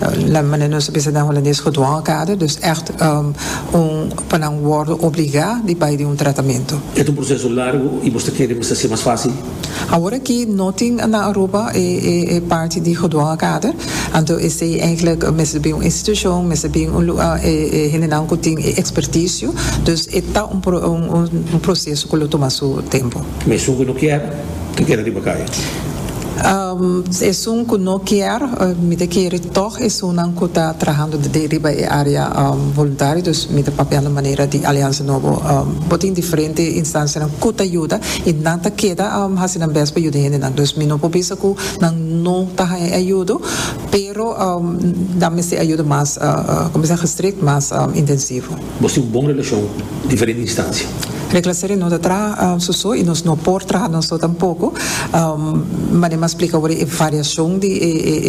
La manera nos ta bisa den Holandes gedwongen kader, dus ècht un pa nan wòrdu obligá di bai di un tratamento. E ta un proseso largu i bo ta kere mester ser mas fásil? Awor aki no tin na Aruba e parti di gedwongen kader, anto esei eindelijk mester bin un institushon, mester bin un lugá e hendenan ku tin e ekspertisio. Dus e ta un proseso ku lo tuma su tempu. Mesun ku no kier, ta keda riba kaya. Esun ku no kier, mi ta kere tòg esunnan ku ta trahando riba e área voluntario, dus mi ta papiando manera di Aliansa Nobo. Bo tin diferente instansianan ku ta yuda i nan ta keda hasi nan bes pa yuda e hendenan. Dus mi no por bisa ku nan no ta haña e ayudo, pero nan mester ayudo mas, kòmensá gestrikt, mas intensivo. Nos tin un bon relashon ku diferente instansia. Regla seri no ta traha su so i nos no por traha nos so tampoko. Manera m'a splika awor e variashon di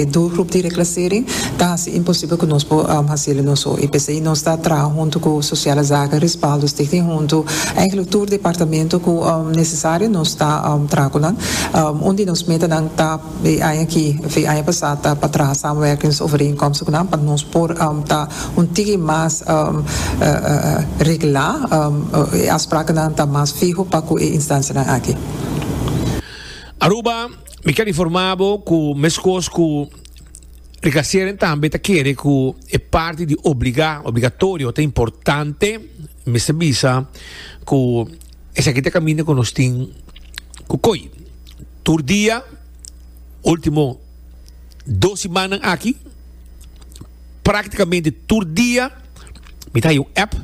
e dos grup di regla seri ta hasi imposibel ku nos por hasi el nos so. I p'esei nos ta traha huntu ku Sosiale Zaken, Rispaldo Stichting huntu eigenlijk tur departamento ku nesesario nos ta traha ku nan. Un di nos metanan ta. E aña aki, of e aña pasá, ta pa traha samenwerkingsovereenkomstnan pa nos por ta un tiki mas reglá. E afsprakennan ta mas fiho pa ku e instancianan aki. Aruba, Mi ker informá bo ku meskos ku Ricasieren tambe ta kere ku e parti di obligá, obligatorio, ta importante, mi mester bisa ku esaki ta kaminda ku nos tin ku koi. Tur dia, ultimo dos simannan aki, praktikamente tur dia mi ta haya un app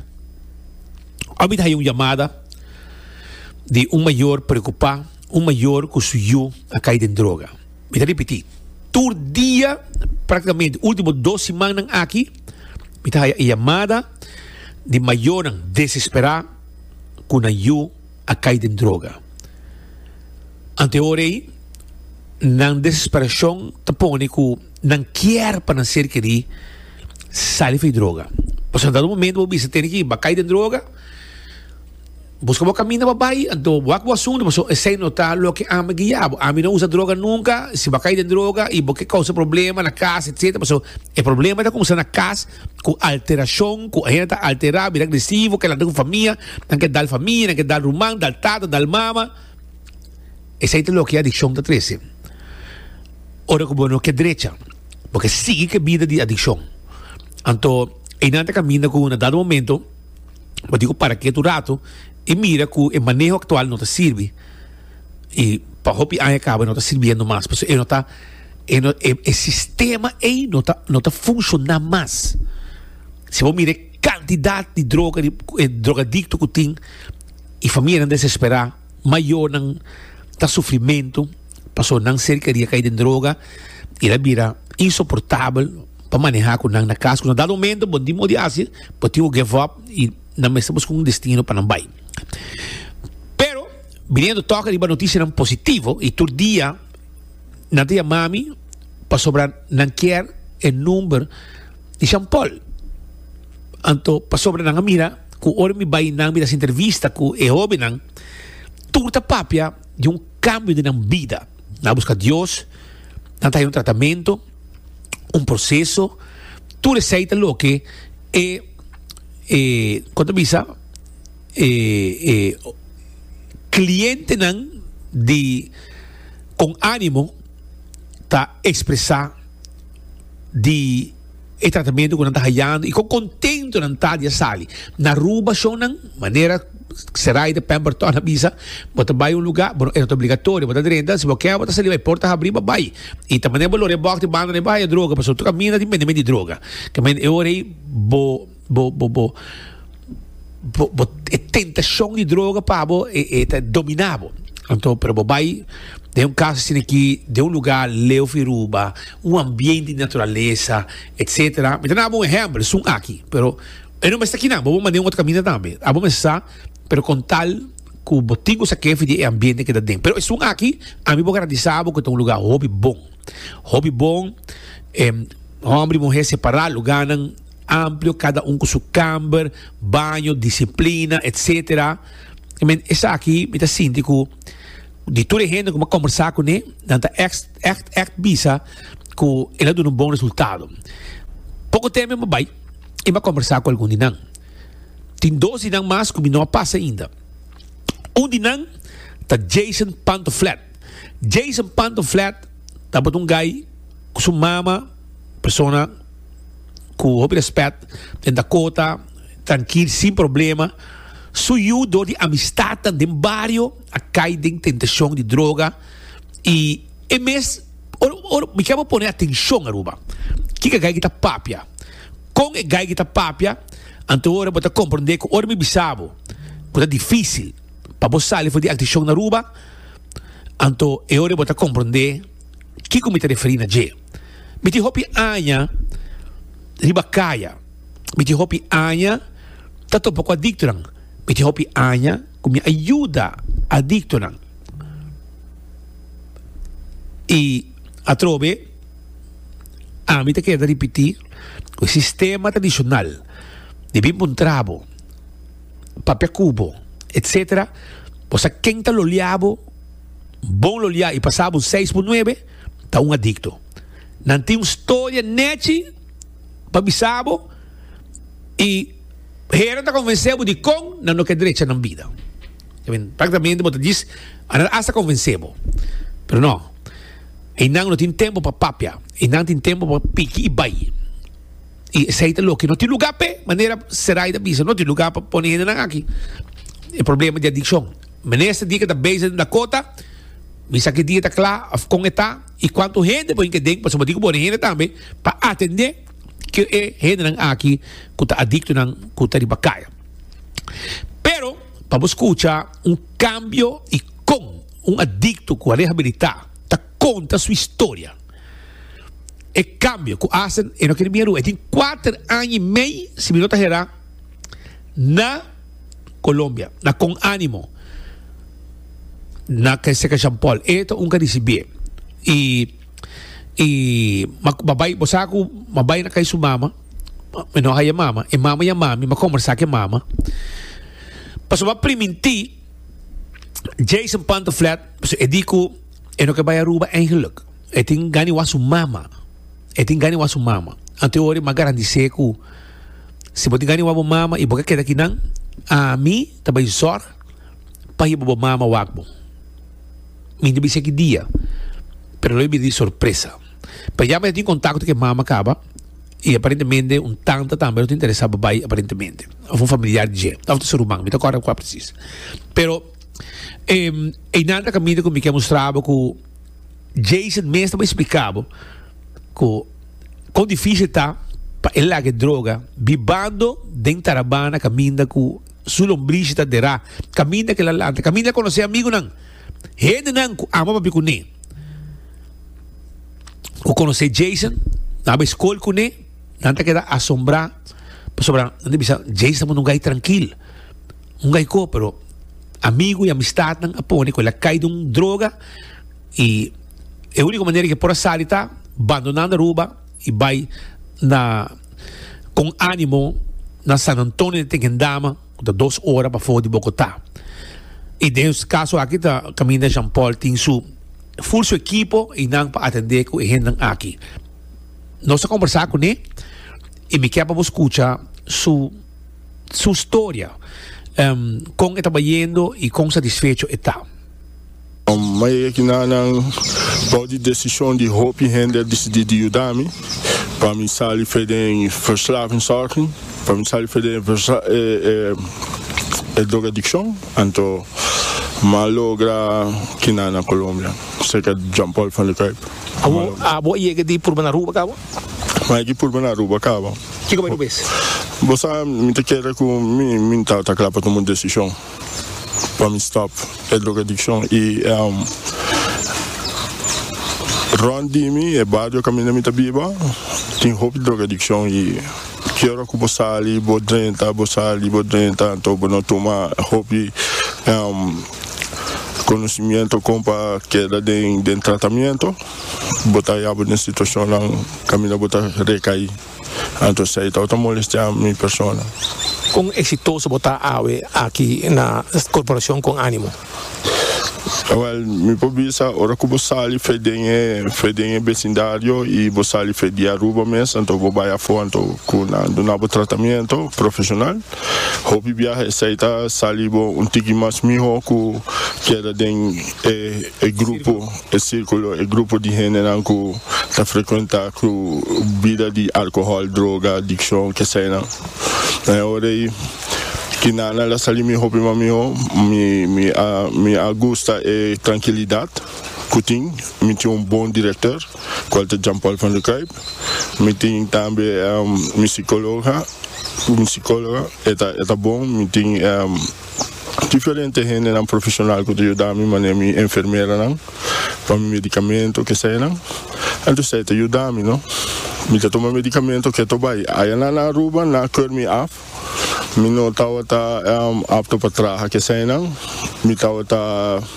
òf mi ta haya un yamada di un mayor preokupá, un mayor ku su yu a kai den droga. Mi ta ripití, tur dia, praktikamente ultimo dos simannan aki, mi ta haya e yamada di mayornan desesperá ku nan yu. a cay den droga. Ante hora ey, nan desesperacion ta pone cu nan kier pa nan ser keri sali fu e droga. Pasobra nan ta na un momento cu bo bisa tene ki bacay den droga, busca bo caminda pa bay, ante bo wak bo asunto, pasobra esey no ta loke ami guia bo. Ami no a usa droga nunca, si bo a cay den droga y bo ke causa problema na cas, etcetera, pasobra e problema ta cuminsa na cas, ku alterashon ku hende ta alterá, bira agresivo, ke lanta ku famia, nan ke dal famia, nan ke dal ruman, dal tata, dal mama. Esei ta loke adikshon ta trese. Ora ku bo no ke drecha, bo ke sigui ku e bida di adikshon. Anto einan ta kaminda ku na dado momento bo tin ku para ketu un ratu i mira ku e maneho aktual no ta sirbi. Y pa hopi aña caba e no ta sirbiendo mas pasobra e no ta e no e e sistema ey no ta no ta funciona mas si bo mira e cantidad di droga di e drogadicto cu tin y familianan desespera mayornan ta sufrimento pasobra nan cercaria cay den droga y ta bira insoportabel pa maneha cu nan na cas cu na dado momento bo tin modi hasi bo tin cu give up y nan mester busca un destino pa nan bay. Biniendo tok riba notisianan positivo y tur dia nan ta yama mi pasobra nan kier e number di Jean Paul. Anto pasobra nan a mira cu ora mi bay nan mi ta haci entrevista cu e hobennan tur ta papia di un cambio den nan bida. Nan a busca Dios, nan ta haci un tratamento, un proceso, tur esey ta loke e, e, con ta bisa, E clientenan di con animo ta expresa di e tratamento cu nan ta hayando y con contento nan ta di a sali na Aruba shownan manera Seraida Pamper Ton a bisa bo ta bay un lugar bo e no ta obligatorio bo ta drenta si bo kier bo ta sali bay porta habri bo bay y ta manera bo lo rebok di banda riba haya droga pasobra tur caminda tin bende men di droga caminda e ora ey bo Bo bo bo bo bo e tentacion di droga pa bo e, e ta domina bo. Anto, pero bo bai den un caso así aquí, den un lugar leo fi Aruba, un ambiente di naturaleza, etcétera. Mi ta dando un ejemplo, esun aki, pero e no mester aki nan, bo bo manda den un otro caminda tambe. Abo mester sa, pero con tal cu bo tin cu sa ke fi di e ambiente que ta den. Pero esun aki, ami por garantisa bo cu ta un lugar hopi bon. Hopi bon, homber y muher separá lugarnan. amplio cada un cu su camber, baño, disciplina etc. I mean esaki mi ta sinti cu di tur e hende cu mi a conversa cu ne nan ta echt echt echt bisa cu el a duna un bon resultado. Poco tempo mi a bay y mi a conversa cu algun di nan. Tin dos di nan mas cu mi no a pas ainda. Un di nan ta Jason Pantofflett. Jason Pantofflett tabata un guy cu su mama. persona cu hopi respet den ta cota trankil sin problema su yu dor di amistadnan den bario a cay den tentacion di droga y e mes oro mi kier bo pone atencion Aruba kico gayki ta papia con e gayki ta papia anto ora bo ta comprende cu ora mi bisa bo cu ta dificil pa bo sali for di alticion Aruba anto e ora bo ta comprende. kiko mi ta referí na dje. Mi tin hopi aña riba kaya. Mi tin hopi aña ta topa ku adiktonan. Mi tin hopi aña ku mi a yuda adiktonan. I atrobe ami ta keda ripití ku e sistema tradishonal di bin pa un trabo, papia ku bo, etsetera, bo sa ken ta loliá bo. Bon lo lia i pasa bo seis por nuebe ta un adicto. Nan tin un storia nechi pa bisa bo i heren ta convence bo di con nan no ke drecha nan bida. Practicamente bo ta diz a nan hasta convence bo. Pero no, e nan no tin tempo pa papia, e nan tin tempo pa piki i bay. I esey ta loke no tin lugar p'e, manera Seray ta bisa, no tin lugar pa pone hendenan aki. E problema di adiccion. Minister di e ke ta bezig den Dakota bisa ki dia ta kla of kon e ta i kuantu hende por hinka den pasobra bo tin ku boni hende tambe pa atende ki e hendenan aki ku ta adiktonan ku ta riba kaya. Pero pa bo skucha un kambio i kon un adikto ku a rehabilitá ta konta su historia. E kambio ku Asen e no kere mira rua. E tin kuater aña i mei si mi no ta herá na. Colombia na con ánimo na que seca Jean Paul e ta un cadici bie y y ma babai bo sa cu ma bai na cai su mama mi no haya mama e mama ya mami ma conversa ke mama pasobra priminti Jason Pantoffleth e di cu e no ke bai Aruba eigenlijk e tin gana wak su mama e tin gana wak su mama anto e ora ma garantise cu Si bo tin gana di wak bo mama i bo ka keda aki nan, ami ta bai zorg pa hiba bo mama wak bo. Mi no bisa ki dia, pero lo a bira di sorpresa. P'eja mi a tin kontakto ku e mama kaba i aparentemente un tanta tambe lo ta interesa pa bai aparentemente, òf un familiar di dje, òf ta su ruman, mi no ta kòrda kua presis. Pero, einan ta kaminda ku mi ke mustra bo ku. Jason mes ta por explica bo cu con dificil ta pa e laga e droga bibando den tarabana caminda cu su lombrishi ta dera caminda cu el a lanta caminda el a conoce amigunan hendenan cu ama papia cune cu conoce Jason nan a bay scol cune nan ta keda asombra pasobra nan ta bisa Jason ta por un guy trankil un guy co pero. Amigu y amistadnan a pone cu el a cay den un droga y e unico manera cu e por a sali ta bandonando Aruba y bay na con animo na San Antonio de Tequendama cu ta dos ora bafo di Bogota. Y den e caso aki ta caminda Jean Paul tin su full su equipo y nan pa atende cu e hendenan aki. Nos a conversa cune y mi kier pa bo scucha su. su storia kon e tabayendo y kon satisfecho e ta. Mayoria di nan nan bou di decision di hopi hende a dicidi di yuda mi pa mi sali fe den verslavingssorging, pa mi sali fe den e drogadiccion, anto ma logra kina na Colombia cerca di Jean Paul van de Kuyp. Abo a yega di purba na Aruba cabo? Mikey purba na Aruba caba. Kico bay Aruba es? Bo sa mi ta kere cu mi mi ta ta cla pa tuma un decision pa mi stop e drogadiccion y ehm rond di mi e bario caminda mi ta biba tin hopi drogadiccion y ki ora cu bo sali bo drenta bo sali bo drenta anto bo no tuma hopi ehm conocimiento con pa keda den den tratamiento. bo ta hayabo den situacionnan caminda bo ta recaí, anto esei tabata molestia mi persona. Con exitoso bo ta awe aki na Corporacion con Animo? Awel, mi por bisa ora cu bo sali fe den e fe den e becindario y bo sali fe di Aruba mes, anto bo bay afo anto cu nan dunabo tratamento profesional. Hopi biaha esei ta salibo un tiki mas miho cu keda den e grupo. E sirkulo, e grupo di hendenan ku ta frekuentá ku bida di alkohòl, droga, adikshon, keseinan. Na e ora ei ki Nana la sali mi hopi mas mihó. Mi mi a mi a gusta e trankilidat ku tin. Mi tin un bon direktor, kual ta Jan Pòl van der Kuyp. Mi tin tambe mi sikóloga, mi sikóloga e ta e ta bon. Mi tin. Diferente hendenan profesional ku ta yuda mi manera mi enfermeranan pa mi medicamento keseyanan entos esei ta yuda mi no mi ta tuma medicamento keto bai ayana na Aruba na keur mi af mi no tabata apto pa traha keseyanan mi tabata.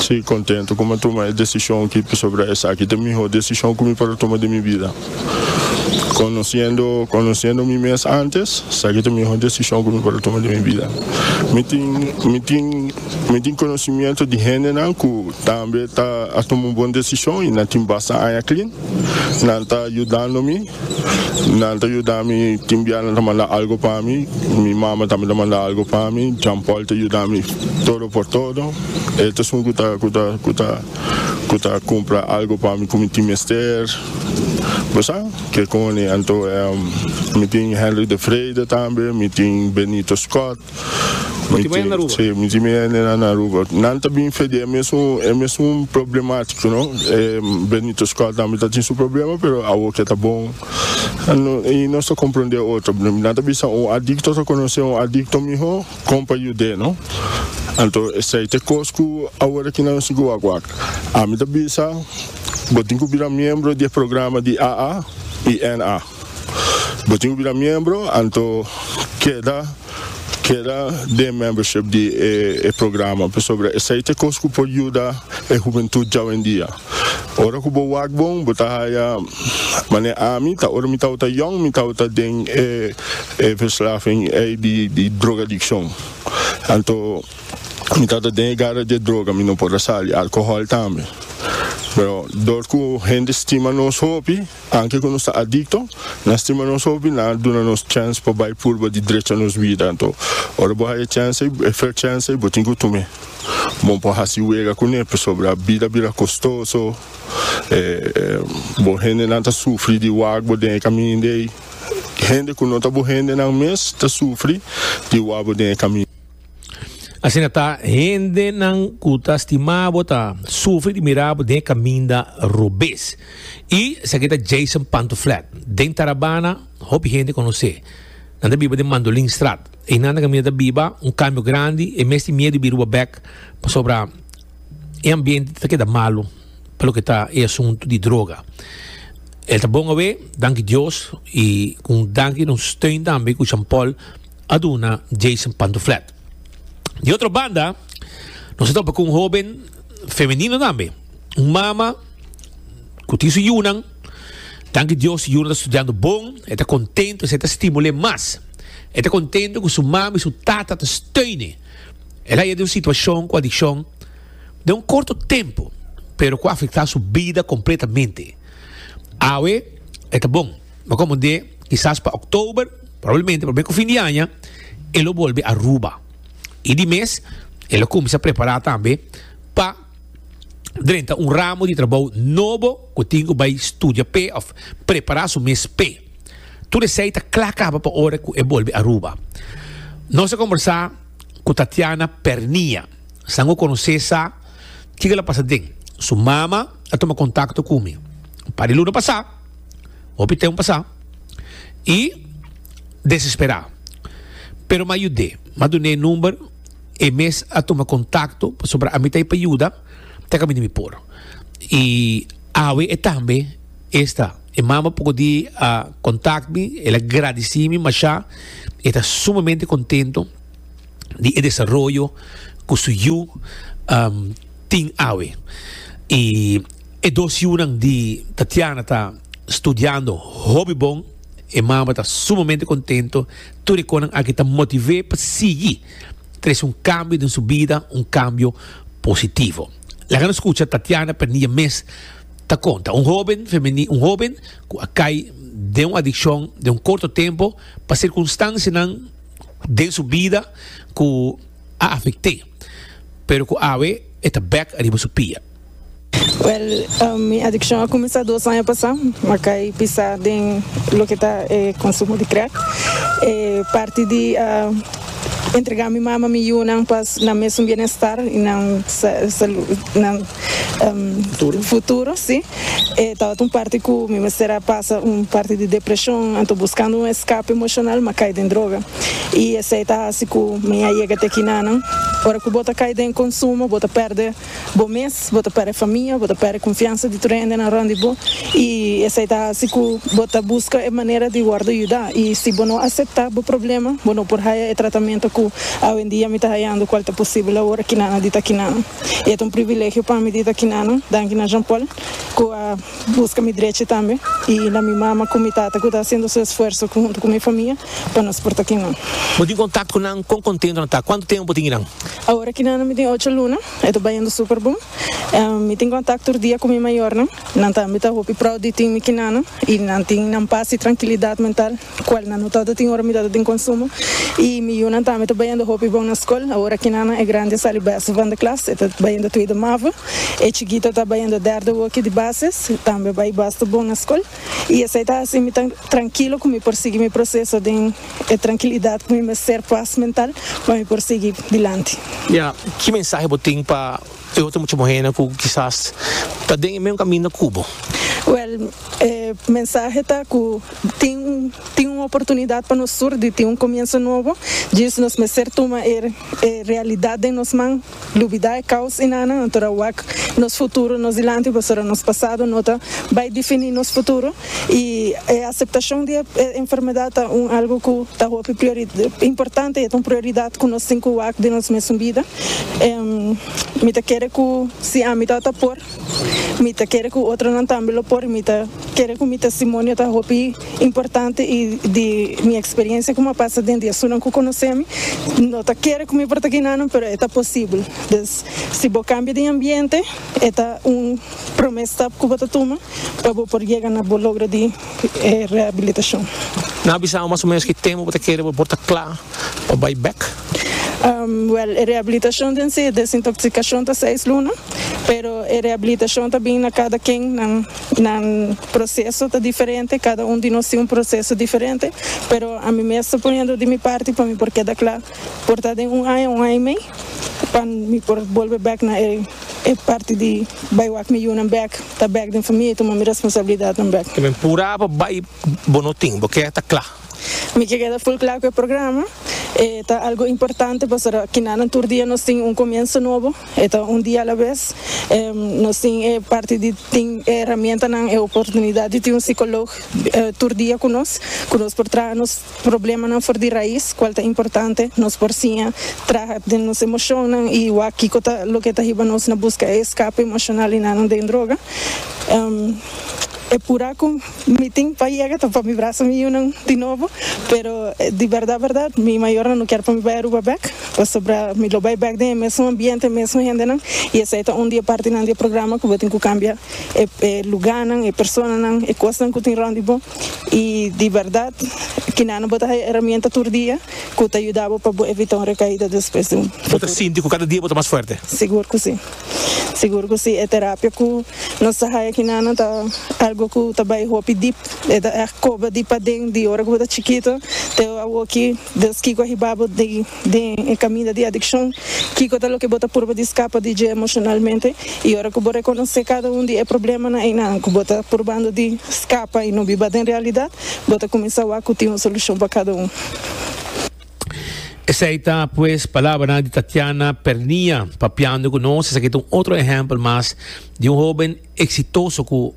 Si, kontentu ku mi a tuma e desishon ki pasobra esaki ta e mihó desishon ku mi por a tuma den mi bida. Konosiendo konosiendo mi mes ántes, sa ki ta e mihó desishon ku mi por a tuma den mi bida. Mi tin mi tin mi tin konosimientu di hendenan ku tambe ta a tuma un bon desishon i nan tin basta aña klin. Nan ta yudando mi. Nan ta yuda mi, tin bia nan ta manda algu pa mi, mi mama tambe ta manda algu pa mi, Jean Paul ta yuda mi todo por todo, e ta sun ku ta ku ta ku ta ku ta kumpra algu pa mi ku mi tin mester, bo sa ke koni, anto mi tin Hendrik de Vrede tambe, mi tin Benito Scott. Miti maya na Aruba? Sí, miti maya nena na Aruba. Nan ta bin fedé e mesun, e mesun problemático, no? E Benito Scott tambe ta tin su problema, pero awor ke ta bon. No, i nos ta komprondé otro. Nan ta bisa un adikto ta konosé un adikto mihó, kon pa yud'é, no? Anto, esei ta e kos ku awor aki nan sigu wak wak. Ami ta bisa, Bo tin ku bira miembro di e programa di AA i NA. Bo tin ku bira miembro anto keda keda den membership di e e programa pasobra esei ta e kos ku por yuda e hubentut djawendia. Ora ku bo wak bon bo ta haya manera ami ta ora mi tabata yòn mi tabata den e e verslaving ei di di drogadikshon anto mi tabata den e gara di e droga mi no por a sali alkohòl tambe pero dor ku hende stima nos hopi Anke ku nos ta adikto, nan stima nos hopi, nan a duna nos chèns pa bai purba di drecha nos bida. Anto, ora bo haya chèns ei, e fèr chèns ei, bo tin ku tume. Bo no por hasi wega kuné, pasobra bida bira kostoso, e bo hendenan ta sufri di wak bo den e kaminda ei. Hende ku no ta bo hendenan mes ta sufri di wak bo den e kaminda. Asina ta, hendenan ku ta stima bo ta sufri di mira bo den e kaminda robes. I esaki ta Jason Pantoflat. Den Tarabana, hopi hende konos'é. Nan ta biba den Mandolinstraat. Einan nan kaminda ta biba un kambio grandi. E mes tin miedu di biruba bèk pasobra e ambiente ta keda malu pa loke ta e asuntu di droga. El ta bon awe, danki Dios, i ku un danki di nos steun tambe ku Jean Paul. a duna Jason Pantuflet. Di otro banda, nos a topa cu un hoben femenino tambe, un mama cu tin su yunan. Danki Dios, su yunan ta studiando bon, e ta contento, esey ta stimul'e mas. E ta contento cu su mama y su tata ta steun'e. El a yega den un situacion cu adiccion den un corto tempo, pero cu a afecta su bida completamente. Awe e ta bon. Lo como de quizás pa oktober, probablemente pa beko fin di aña, e lo bolbe Aruba. I di mes, e lo kuminsá prepará tambe pa drenta un ramo di trabou nobo ku tin ku bai studia p'e òf prepará su mes p'e. Tur esei ta kla kaba pa ora ku e bolbe Aruba. Nos a kombersá ku Tatiana Pernia. Sa ngó konosé sa kiko el a pasa den. Su mama a tuma kontakto ku mi un par di luna pasá. Hopi tem pasa y desespera pero ma yude ma dune e number e mes a tuma contacto pasobra ami ta pa yuda te caminda mi por y awe e tambe esta e mama poco di a contact mi el a gradeci mi masha y e ta sumamente contento di e desaroyo cu su yu tin awe y. E dos yunan di Tatiana ta studiando hopi bon. E mama ta sumamente contento. Tur e conan aki ta motivé pa sigui trece un cambio den su bida, un cambio positivo. Laga nos scucha Tatiana Pernilla mes ta conta, un hoben femeni-, un hoben cu a cay den un adiccion den un corto tempo pa circunstancianan den su bida cu a afect'é, pero cu awe e ta bek ariba su pia. Well mi adiccion a cuminsa dos aña pasa ma cay pisa den loke ta e consumo di crack e parti di entrega mi mama mi yunan pa nan mesun bienestar y nan nan futuro si e tabata un parti cu mi mester a pasa un parti di depresion anto buscando un escape emocional ma cay den droga y esey ta haci cu mi a yega te kina nan ora cu bo ta cay den consumo bo ta perde. Bo mes, bo ta perde famia, bo ta perde confiansa di tur hendenan rond di bo y esey ta haci cu bo ta busca e manera di wordo yuda. Y si bo no acepta bo problema, bo no por haya e tratamento cu awendia mi ta hayando cual ta posible awor aki nana di takinana. Y e ta un privilegio pa mi di takinana, danki na Jean-Paul cu a busca mi drechi tambe y na mi mama cu mi tata cu ta haciendo su esfuerzo hunto cu mi famia pa nos por takinan. Bo tin contacto cu nan? Con contento nan ta? Cuanto tempo bo tin y nan? Awor aki nan mi tin ocho luna, e ta bayendo super bon. Mi tin kontak tur dia ku mi mayornan, nan tambe ta hopi prou di tin mi kinanan i nan tin nan pas i trankilidat mental kual nan no tabata tin ora mi tabata tin konsumo. I mi yunan tambe ta bayendo hopi bon na skol. Awor aki nan e grandi a sali bèste van de klas, e ta bayendo tuida mava. E chikito ta bayendo derde woki di basis, tambe bai basta bon na skol. i esei ta hasi mi ta trankilo ku mi por sigui mi proseso den e trankilidat ku mi mester pas mental pa mi por sigui dilanti. Ya, ki mensahe bo tin pa e otro mucha muhénan ku kisas ta den e mesun kaminda ku bo? Wèl, e mensahe ta ku tin tin un oportunidat pa nos tur di tin un komienso nobo, djis nos mester tuma e e realidat den nos man. Lubida e kaos i nana nan tora wak nos futuro nos dilanti pasobra nos pasado no ta bai difini nos futuro i e aseptashon di e enfermedat ta un algu ku ta hopi importante i e ta un prioridat ku nos tin ku wak den nos mesun bida. Mi ta kere ku si ami tabata por. Mi ta kere ku otronan tambe lo por. Mi ta kere ku mi testimonio ta hopi importante i di mi eksperiencia ku mi a pasa den di esunnan ku konosé mi. No ta kere ku mi por ta kinanan, pero e ta posibel. Dus, si bo kambia di ambiente, e ta un promé stap ku bo ta tuma pa bo por yega na bo logro di rehabilitashon. Nan a bisabo mas o ménos ki tempu bo ta kere bo por ta kla pa bai bèk. Wel, e rehabilitashon den se desintoxikashon ta seis luna, pero e rehabilitashon ta bin na kada ken, nan nan proseso ta diferente, kada un di nos tin un proseso diferente, pero ami mes ta poniendo di mi parti pa mi por keda kla por ta den un aña, un aña i mei pa mi por bolbe bek na e e parti di bai wak mi yunan bek, ta bek den famia i tuma mi responsabilidadnan bek. Te bin pura pa bai bo no tin, bo keda ta kla. Mi ke keda full kla ku e programa. E ta algu importante pasobra kinanan tur dia nos tin un komienso nobo, e ta un dia alabes. Em nos tin e parti di tin e heramientanan, e oportunidat di tin un sikolog tur dia ku nos, ku nos por traha nos problemanan for di rais, kual ta importante. Nos por siña traha den nos emoshonnan i wak kiko ta loke ta hiba nos na buska e eskape emoshonal i nanan den droga. Em e pura ku. Mi tin pa yega ta pa mi braso miunan di nobo, pero di berdad berdad mi mayornan no kier pa mi bai Aruba bek, pasobra mi lo bai bek den e mesun ambiente, e mesun hendenan y esei ta un di e partinan di e programa cu bo tin cu cambia e lugarnan, e personanan, e cosnan cu tin rond di bo y di berdad Kinana bo ta haya heramienta tur dia cu ta yuda bo pa bo evita un recaida despues di un futuro. Bo ta sinti cu cada dia bo ta mas fuerte? Sigur cu si. Sigur cu si, e terapia cu nos ta haya aquí nanan ta algo cu ta bay hopi dip, e ta echt coba di paden di ora cu bo ta chikito te awoki, dus kico a hiba bo di den e caminda di adiccion, kico ta loke bo ta purba di scapa di dje emocionalmente y ora cu bo reconoce cada un di e problemanan eynan cu bo ta purbando di scapa y no biba den realidad, bo ta cuminsa wak cu tin un solucion pa cada un. Esei ta pues palabranan di Tatiana Pernia papiando ku nos. Esaki ta un otro ehèmpel mas di un hóben eksitoso ku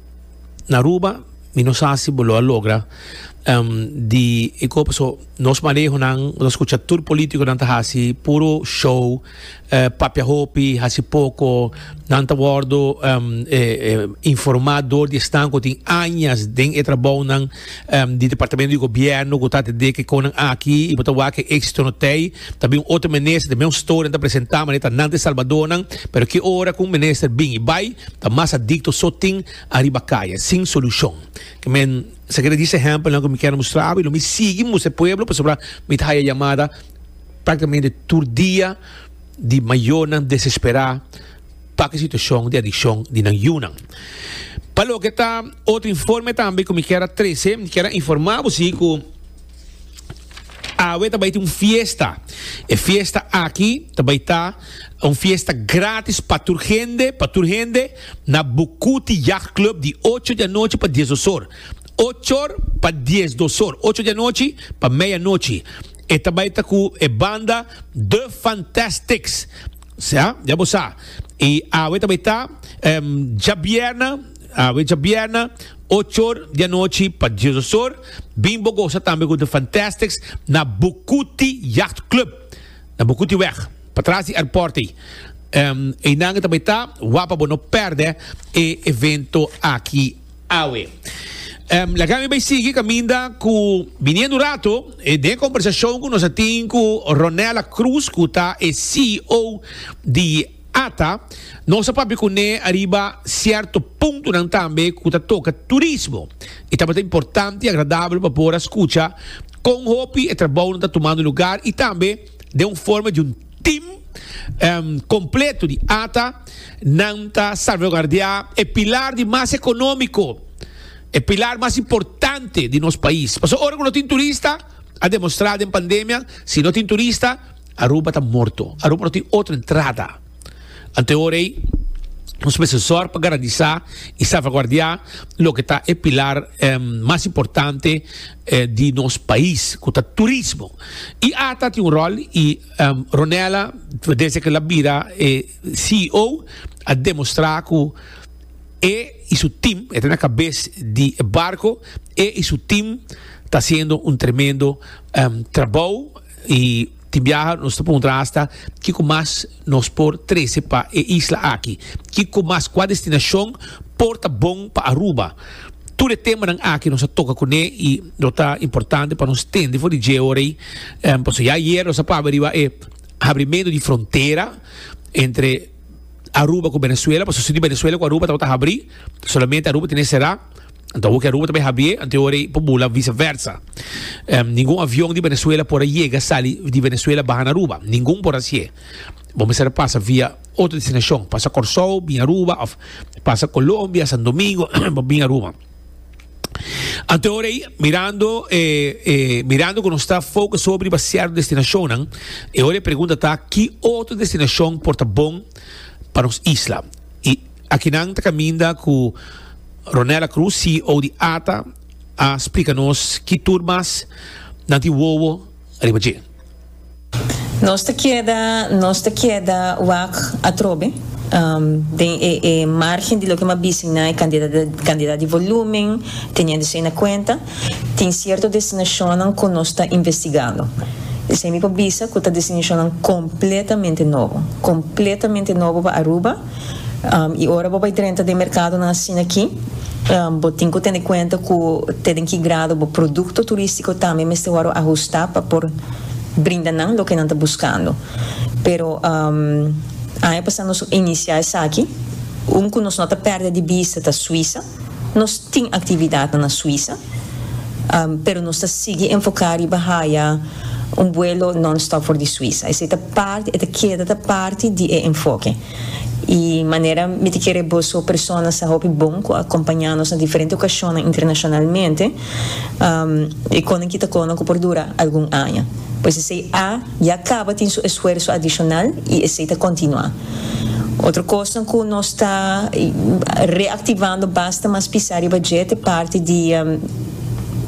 na Aruba mi no sa si bo lo a logra di e kos paso nos manehonan nos skucha tur polítikonan ta hasi puro show. papia hopi, hasi poko, nan ta wordo informa door di esnan ku tin añas den e trabounan di departamento di gobierno ku ta atendé kiko nan aki i bo ta wak e éksito no tei. Ta bin un otro minister, ta bin un storia nan ta presentá maneer ta nan ta e salbadónan, pero ki ora ku un minister bin i bai ta mas adikto so tin ariba kaya, sin solushon. Ke men sa keda di sehèmpelnan ku mi keda mustrabo i lo mi sigui mustra e pueblo pasobra mi ta haya yamada. Práktikamente tur dia di mayonan desesperá pa ki situashon di adikshon di nan yunan. Pa loke ta otro informe tambe ku mi kier a trese, mi kier a informá bo si ku awe ta bai tin un fiesta. E fiesta aki ta bai ta un fiesta grátis pa tur hende, pa tur hende na Bucuti Yacht Club di ocho di anochi pa dies dos or. Ochor pa dies dos or, ocho di anochi pa meia nochi. E ta bai ta cu e banda The Fantastics. Sea, ya bo sa. Y awe ta bai ta em, djabierna, awe djabierna, ochor di anochi pa diososor. Bin bo goza tambe cu The Fantastics na Bucuti Yacht Club. Na Bucuti weg, pa tras di airport ei. Em, einan e ta bai ta, wapa bo no perde e evento aki. Awe. Laga mi bay sigui caminda cu biniendo rato eh, den conversacion cu nos a tin cu Ronella Cruz cu ta e CEO di ATA, nos a papia cune ariba cierto puntonan tambe cu ta toca turismo. Y tabata importante y agradabel pa por a scucha con hopi e trabounan ta tumando lugar y tambe den un forma di un tim kompleto di ata nan ta salvaguardiá e pilar di mas ekonómiko, e pilar mas importante di nos pais. Pasobra ora ku no tin turista, a demostrá den pandemia, si no tin turista Aruba ta morto, Aruba no tin otro entrada. Ante ora ei, nos mester sòrg pa garantisá i salvaguardiá loke ta e pilar mas importante di nos pais, ku ta turismo. I ata tin un ròl i Ronela, desde ku el a bira e CEO, a demostrá ku e i su tim, e ta na kabes di e barko, e i su tim ta hasiendo un tremendo trabou. Y tin biaha nos ta preguntra hasta kico mas nos por trece pa e isla aki. Kico mas, cua destinacion por ta bon pa Aruba. Tur e temanan aki nos a toca cune y lo ta importante pa nos tende for di dje ora ey. Pasobra ya ayer nos a pabia riba e habrimento di frontera entre Aruba cu Venezuela, pasobra si di Venezuela cu Aruba tabata habri, solamente Aruba tene e cera. Anto Aruba ta bay habie, anto e rey por bula vice versa. Um, ningun avion di Venezuela por a yega sali di Venezuela baha na Aruba. Ningun por hacié. Bo mester pasa via otro destinacion. Pasa Corsou, bin Aruba, of pasa Colombia, San Domingo, pa bin Aruba. Anto e rey, mirando, eh, eh, mirando con está focus sobre pa cierto destinacionan, e ora e pregunta ta, ki otro destinacion por ta bon pa nos isla? Akinan ta kaminda ku Ronella Cruz, CEO di ata, a splika nos ki tur mas nan tin wowo riba dje. Nos ta keda nos ta keda wak atrobe den e e margen di loke mi a bis'en na e kantidat kantidat di volúmen, teniendo esei na kuenta, tin sierto destinashonnan ku nos ta investigando. Esei mi por bisa ku ta destinashonnan kompletamente nobo, kompletamente nobo pa Aruba. I ora bo bai drenta den merkadonan asin'akí, bo tin ku tene kuenta ku te den ki grado bo produkto turístiko tambe mester wòrdu ahustá pa por brinda nan loke nan ta buskando. Pero, aña pasá nos inisiá esaki. Un ku nos no ta pèrdè di bista ta Suisa. Nos tin actividadnan na Suiza, pero nos ta sigui enfoca riba haya un vuelo non-stop for di Suiza. Esey ta parti, e ta keda ta parti di e enfoke. Y manera mi ta kere boso personas sa hopi bon cu a acompaña nos na diferente ocacionnan internacionalmente, e con nan kita con nan cu por dura algun aña. Pues esey a ya caba tin su esfuerso adicional y esey ta continua. Otro cosnan cu nos ta reactivando basta mas pisa riba dje ta e parti di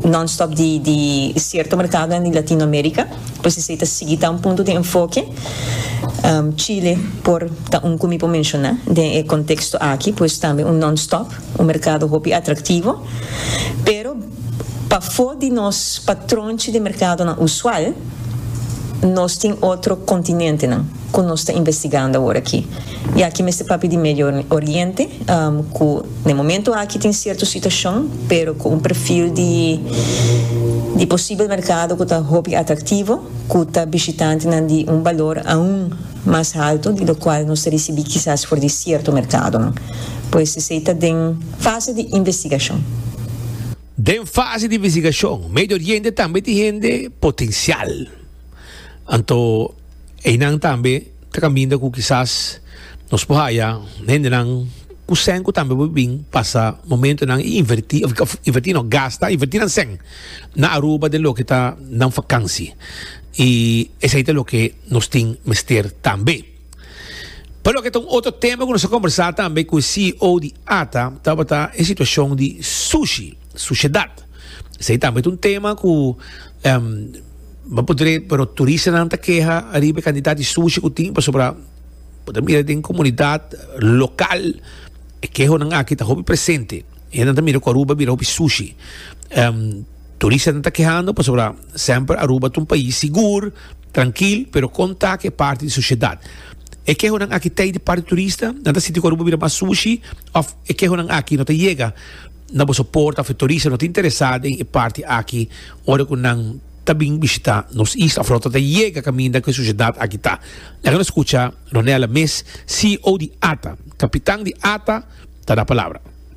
non-stop di cierto mercadonan di Latinoamerica, pues esey ta sigui ta un punto di enfoke. Chile por ta un cu mi por menciona den e contexto aki, pues tambe un non-stop, un mercado hopi atractivo. Pero pafo di nos patronchi di mercadonan usual nos tin otro continentenan. ku nos ta investigando awor aki. I aki mester papia di Medio Oriente, ku na e momentu aki tin sierto situashon, pero ku un perfil di di posibel merkado ku ta hopi atraktivo, ku ta bishitantenan di un balor aun mas haltu di lokual nos ta risibí kisas for di sierto merkadonan. Pues esei ta den fase di investigashon. Den fase di investigashon, Medio Oriente tambe tin hende potensial. Anto einan tambe ta kaminda ku kisas nos por haya hendenan ku sèn ku tambe por bin pasa momentonan i invertí, òf invertí no, gasta, invertí nan sèn na Aruba den loke ta nan vakansi. I esei ta loke nos tin mester tambe. Pa loke ta un otro tema cu nos a combersa tambe cu e CEO di ATA tabata e situacion di sushi, suciedad. Esey tambe ta un tema cu em, bo podré, pero turistanan ta keha ariba e cantidad di sushi cu tin pasobra bo ta mira den comunidad local e kehonan aki ta hopi presente. E hendenan ta mira cu Aruba a bira hopi sushi. Em, turistanan ta kehando pasobra semper Aruba ta un pais sigur. Trankil, pero kon ta ku e parti di soshedat? E kehonan aki ta i di parti turista? Nan ta sinti ku Aruba bira mas sushi? Òf e kehonan aki no ta yega na boso porta òf e turista no ta interesá den e parti aki ora ku nan ta bin bishitá nos isla òf nan ta ta yega kaminda ku e soshedat aki ta? Laga nos skucha Ronella mes, CEO di ata. Kapitan di ata ta da palabra.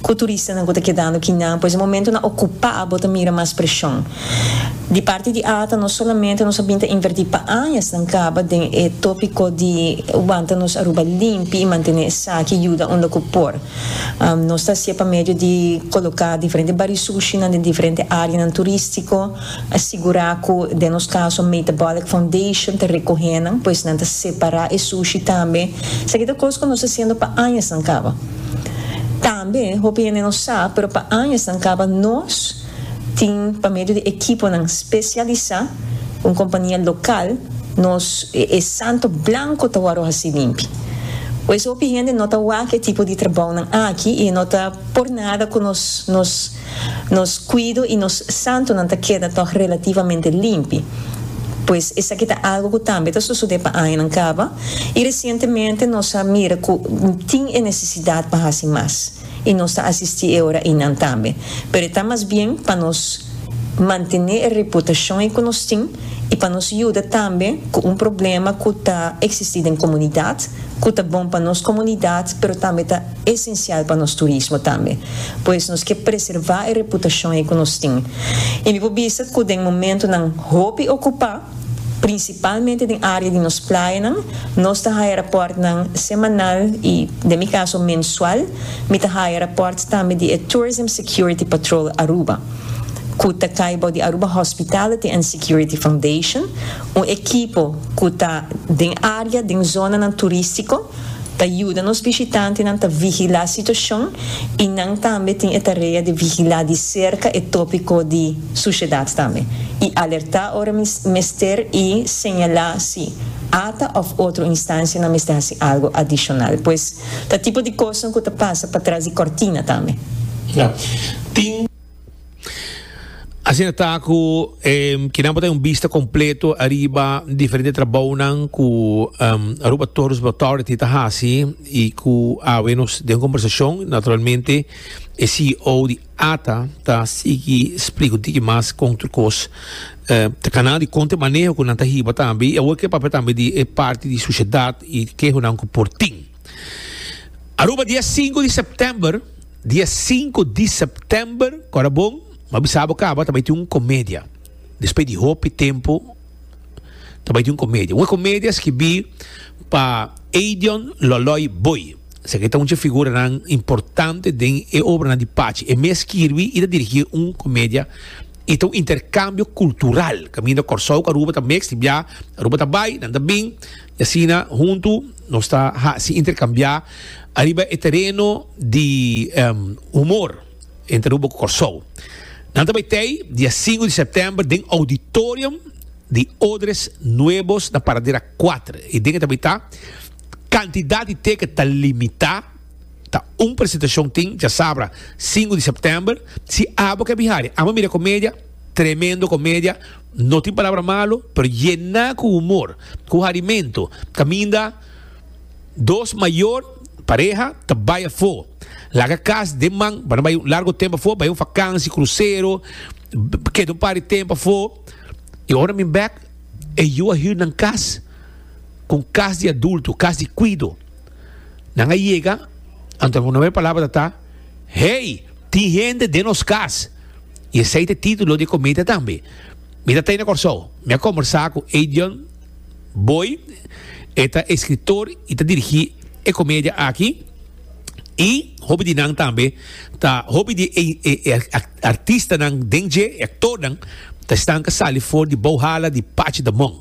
Cu turistanan cu ta kedando aki nan, pues e momentonan ocupa bo ta mira mas presion. Di parti di Ata nos solamente nos a bin ta inverti pa añas nan caba den e topico di wanta nos Aruba limpi y mantene esaki yuda unda cu por. Nos ta haci'e pa medio di coloca diferente barisuchinan den diferente areanan turistico, sigura cu den nos caso Metabolic Foundation ta recohenan, pues nan ta separa e sushi tambe. Esaki ta cos cu nos ta haciendo pa añas nan caba. Tambe hopi hende no sa, pero pa añanan kaba nos tin pa medio di ekiponan spesialisá ku un kompania lokal nos e santo blanko ta wòrdu hasi limpi. Pues hopi hende no ta wak e tipo di trabounan aki i e no ta por nada ku nos nos. Nos kuido i nos santunan ta keda tòg relativamente limpi. Pues esaki ta algu ku tambe ta sosodé pa añanan kaba, i resientemente nos a mira ku tin e nesesidat pa hasi mas, i nos ta asistí e ora einan tambe. Pero e ta mas bien pa nos mantené e reputashon ei ku nos tin i pa nos yuda tambe ku un problema ku ta eksistí den komunidat, ku ta bon pa nos komunidat pero tambe ta esencial pa nos turismo tambe. Pues nos ke preserva e reputacion ei ku nos tin. I mi por bisa ku den momentunan hopi okupa, principalmente den area di nos playanan, nos ta haya raportnan semanal i, den mi caso, mensual, mi ta haya raport tambe di e Tourism Security Patrol Aruba, ku ta kai bou di Aruba Hospitality and Security Foundation, un ekipo ku ta den area, den zonanan turístiko. Ta yuda nos bishitantenan ta vigilá situashon i nan tambe tin e tarea di vigilá di serka e tópiko di sushedat tambe, i alertá ora mester i señalá si ata òf otro instansianan mester hasi algu adishonal. Pues ta tipo di kosnan ku ta pasa patras di kòrtina tambe. Tin. Asina ta ku e kinan por ta un bista kompleto ariba diferente trabounan ku Aruba Tourism Authority ta hasi i ku awe nos den kombersashon naturalmente e CEO di ATA ta sigui splika un tiki mas kon tur kos ta kanal di konta e maneho ku nan ta hiba tambe i awor ke papia tambe di e parti di susiedat i kehonan ku por tin. Aruba dia e sinku di september, dia e sinku di september, kora bon, m'a bisa bo kaba ta bai tin un komedia. Despues di hopi tempu ta bai tin un komedia. Un komedia skibí pa Eidion Loloi Boi. Seki ta un dje figuranan importante den e obranan di Pachi. E mes skirbi i ta dirigí un komedia i ta un interkambio kultural kaminda Kòrsou ku Aruba ta meks di biaha. Aruba ta bai, nan ta bin. Y asina huntu nos ta haci intercambia ariba e tereno di humor entre Aruba cu Corsou. Nan ta bay tey dia singu di september den auditorium di Odres Nuebos na Paradera kuater. Y den e ta bay ta, cantidad di teket ta limita, ta un presentacion tin djasabra singu di september. Si abo ke bihari, amo mira comedia, tremendo comedia. No tin palabra malo, pero yená cu humor, cu harimento. Caminda dos mayor pareha ta bay afo. Laga cas den man pa nan bay un largo tempo afo, bay un vakantie, crucero, keda un par di tempo afo. Y ora mi bek e yu a hür nan cas cu un cas di adulto, cas di cuido. Nan a yega, anto nan hono e palabra ta ta, Hey, tin hende den nos cas. Y esey t'e titulo d'e cometa tambe. Mi ta t'ey na Corsou. Mi a combersa cu Adrian Boyd, e ta e scriptor y ta dirigi e comedia aki. Y hopi di nan tambe ta, hopi di e artistanan den dje, e actornan, ta esnan ca sali for di bou hala di Patch Da Mon.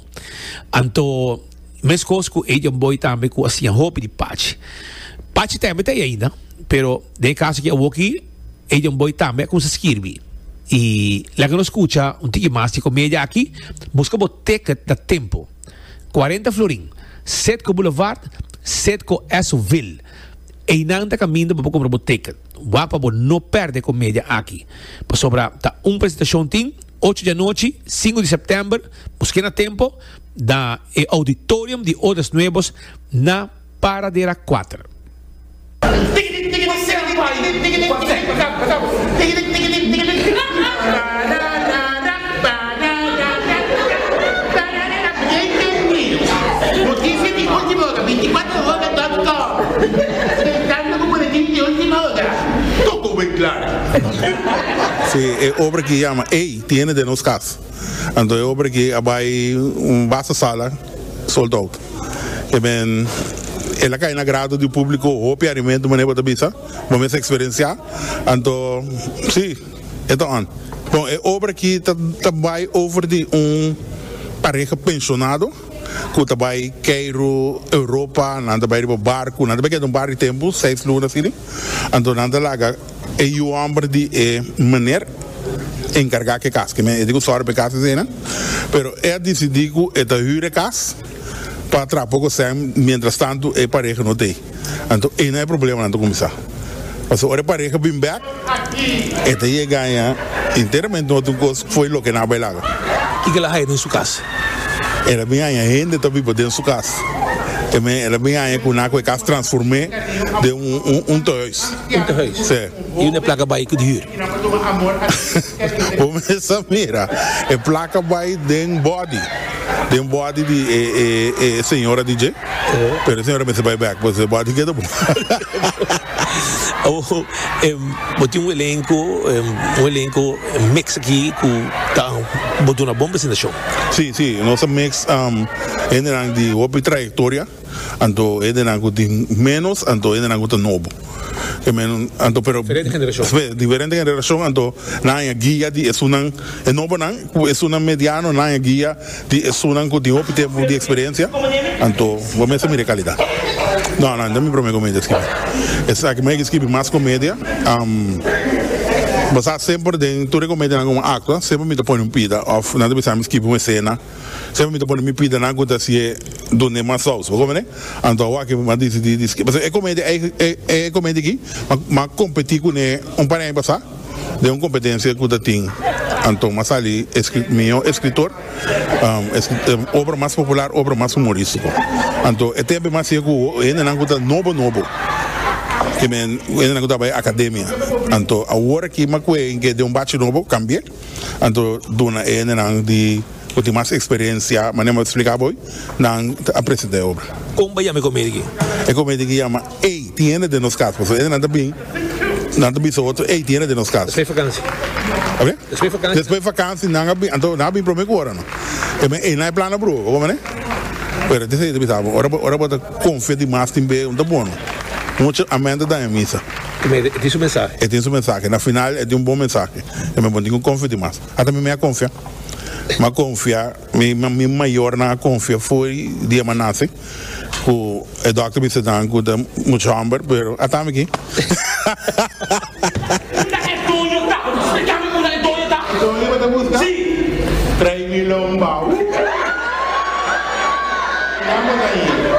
Anto, mescos cu Adrian Boyd tambe cu a siña hopi di Patch. Patch tembe t'ey ainda, pero den e caso aki awoki, E Jon Boy tambe a cuminsa skirbi. Y laga nos scucha un tiki mas di comedia aki. Busca bo ticket na tempo. Cuarenta florin, Citgo Boulevard, Citgo Esso-ville. Eynan ta caminda bo pa cumpra bo ticket. Wak pa bo no perde comedia aki. Pasobra ta un presentacion tin, ocho di anochi, cinco di september. Busqu'e na tempo, na e auditorium di Odas Nuevos na. Para di era kuater. Si e obra ki yama Ey tiene de nos kas. Anto e ober aki a bai un basta sala sold out. E ben el a kai na grado di publico hopi arimento manera bo ta bisa, bo mes a experencia. Anto si e ta on. Bon e ober aki ta ta bai over di un pareha pensionado cu ta bai Cairo, Europa, nan ta bai riba barco, nan ta bai keda un par di tempo seis luna asina, anto nan ta laga. E yu homber di e meneer encarga cu e cas, kimen e tin cu zorg pa e cas esena, pero e a dicidi cu e ta huur e cas pa traha poco cen mientras tanto e pareha no ta ey, anto eynan e problemanan ta cuminsa, pasobra ora e pareha bin bek e ta yega gana enteramente otro tin cos foey loke nan a bay laga. Y kel a haya den su cas? El a bin haya hende ta biba den su cas, kimen el a bin haya cu nan cu e cas transforme den un toyhuis. Tin te huis. Sí. Y un e placa bay cu di huur. Bo mes a mira. E placa bay den body. Den body di e e e señora di dje. Pero e señora mester bay back pasobra e body keda bon. Oh, em, bo tin un elenco, em, un elenco mix aki cu ta bo duna bon presentacion. Sí, sí. Nos a mix, am, hendenan di hopi trayectoria. Anto hendenan ku tin ménos, anto hendenan ku ta nobo. E ménos, anto, pero. Diferente generashon. Espe, diferente generashon, anto nan haña guia di esunnan, e nobonan ku esunnan mediano, nan haña guia di esunnan ku tin hopi tempu di eksperensia. Anto, bo mester mira e kalidat. No, no, no ta mi promé komedia skibi. Esaki mi a higi skibi mas komedia. Basá semper den tur e komedianan ku mi a aktua, semper mi ta pone un pida òf nan ta bisa mi skibi un esena. Sempra mi ta pone mi pida nan ku ta si e dun'e mas sous. Bo kòmprende? Anto awa aki mi a disidí di skeda. Pasobra e komenti ei, e komenti aki mi a kompetí kuné un par di aña pasá den un kompetensia ku ta tin. Anto mi a sali mihó eskritor, obra mas popular, obra mas humorístiko. Anto e tempu ei mi a hasié ku hendenan ku ta nobo nobo, hendenan ku ta bai akademia. Anto awor aki mi a kue den un bachi nobo, kambié. Anto duna e hendenan di ku tin mas eksperensia, manera mi a spliká bo ei, nan ta presentá e obra. Kon bo a yama e komedi aki? E komedi aki yama Ey, tin hende den nos kas. Pasobra e hendenan ta bin, nan ta bisa otro, Ey, tin hende den nos kas. Despues vakansi. Oke? Despues vakansi. Despues vakansi nan a bin. Anto nan a bin promé ku ora nan. E men, Ey, nan e plana broer. Bo kontandi? Pero esei ta bisa bo, ora bo ta konfia dimas tin be, un ta bon. Mucha amènta dan e misa. Primero, e tin su mensahe. E tin su mensahe. Na final e tin un bon mensahe. E me bon tin cu confia di mas. Hasta mi me a confia. Mi a confia, mi mayornan a confia for di e manase cu e doctor bisa nan cu ta mucha homber pero a tami aki. Esta es doño ta. Por eso explica mi cuna e doño ta. E doño bo ta busca? Si. Trae mi lombao. Nan bo ta yina.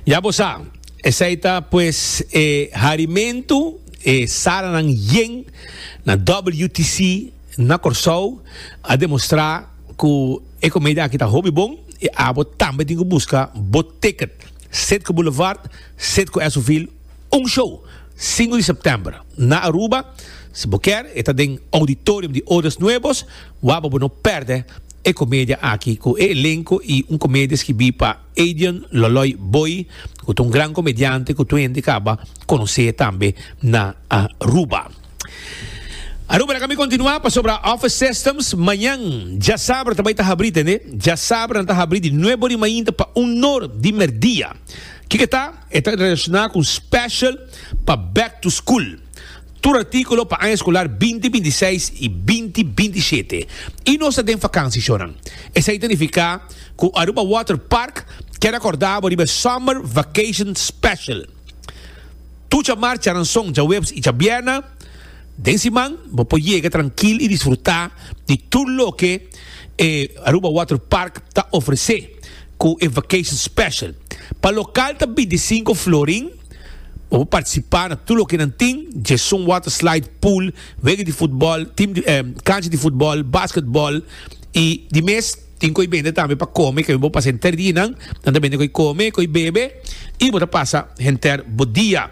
Ya bo sa, esei ta pues e harimentu e salanan yen na WTC na Kòrsou a demostrá ku e komedia aki ta hopi bon i abo tambe tin ku buska bo ticket. Sit ku Boulevard, sit ku Esovil, un show, sinku di sèptèmber, na Aruba. Si bo kèr, e ta den Auditorium di Odas Nuevos, wak pa bo no pèrdè e komedia aki ku e elenko i un komedia skibí pa. Adrian Loloy Boy cu ta un gran comediante cu tur hende caba conoce tambe na Aruba. Aruba laga mi continua pasobra Office Systems mañan djasabra ta bay ta habri tende, djasabra nan ta habri di nuebe ori mainta pa un nor di merdia. Kico e ta? E ta relaciona cu un special pa back to school. Tur artíkulo pa aña eskolar binti binti i seis i binti binti i shete i nos ta den fakansi shonan. Esei ta nifiká ku Aruba Water Park keda kòrda bo riba e Summer Vacation Special. Tur djamar, djaranson, djaweps i djabierna den siman bo por yega trankil i disfrutá di tur loke e Aruba Water Park ta ofresé ku e Vacation Special. Pa lokal ta binti i sinku florin. Bo por participa na tur loke nan tin, dje son, water slide, pool, wega di futbol, tim di cancha di futbol, basketbol y di mes. Tin koe bende tambe pa come ke bo pasa henter di nan, nan ta bende koe come, koe bebe y bo ta pasa henter bo dia.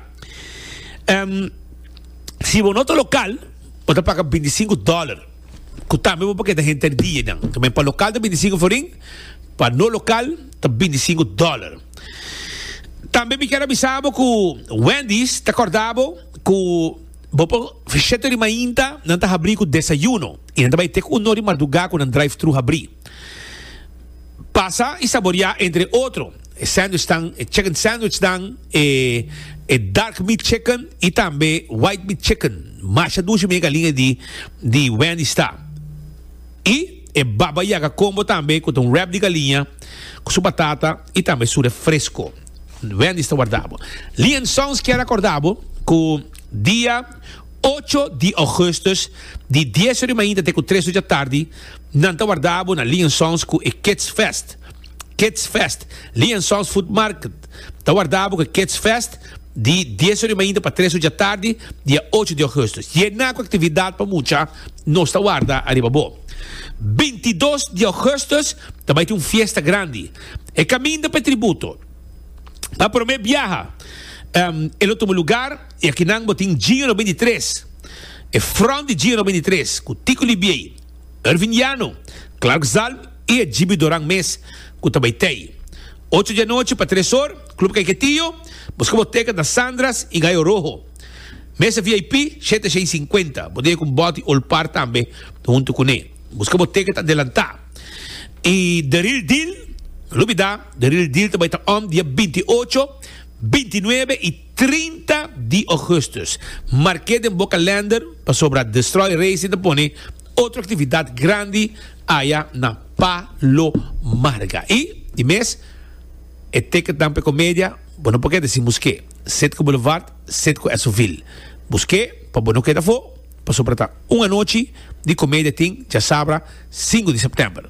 Si bo no ta local bo ta paga binti sinku dollar ku tambe bo por keda henter di nan. Tambe pa local ta binti sinku aforin, pa no local ta binti sinku dollar. Tambe mi kier a bisa bo cu Wendy's ta corda bo cu bo por siete ori mainta nan ta habri cu desayuno y nan ta bay tek uno ori marduga cu nan drive thru habri. Pasa y saborea entre otro e sandwich tan, e chicken sandwich dan, e e dark meat chicken y tambe white meat chicken. Masha dushi mi e galinga di di Wendy's ta. Y e Baba Yaga combo tambe cu ta un wrap di galiña cu su batata y tambe su refresco. Wendy's ta warda bo. Lee and Sons kier a corda bo cu dia ocho di augustus di dies ori mainta te cu tres ori dja tardi nan ta warda bo na Lee and Sons cu e Kids Fest. Kids Fest. Lee and Sons Food Market. Ta wardá bo ku Kids Fest di dies ora i mainta pa tres ora dja tardi dia ocho di ogusto. Yená ku aktividat pa mucha nos ta warda ariba bo. Binti dos di ogusto ta bai tin un fiesta grandi. E kaminda pa e tributo. Pa promé biaha e lo tuma lugar i aki nan bo tin Gio no binti tres, e front di Gio no binti tres ku Tico Libiey, Ervin Llano, Clark Zalm, i e jibidoran mes ku ta bai tei. Ocho di anochi pa tres or, Club Kaiquetillo, busca boteca na Sandras y Gallo Rojo. Mesa VIP, shete shei sinkuenta, bo dije ku Boti Old Par tambe huntu kuné. Busca boteca ta adelantá. Y The Real Deal, no lo bida, The Real Deal ta bai ta om dia binti ocho, binti nuebe y trinta di Augustus. Marke den bo kalender pasobra Destroy Racing ta pone. Otro actividad grandi aya na Palo Marga y di mes e ticketnan p'e comedia bo no por ke deci mos ke Sitco Boulevard, Sitco Esovil. Mos ke pa bo no keda afo pasobra ta un anochi di comedia tin djasabra cinco di september.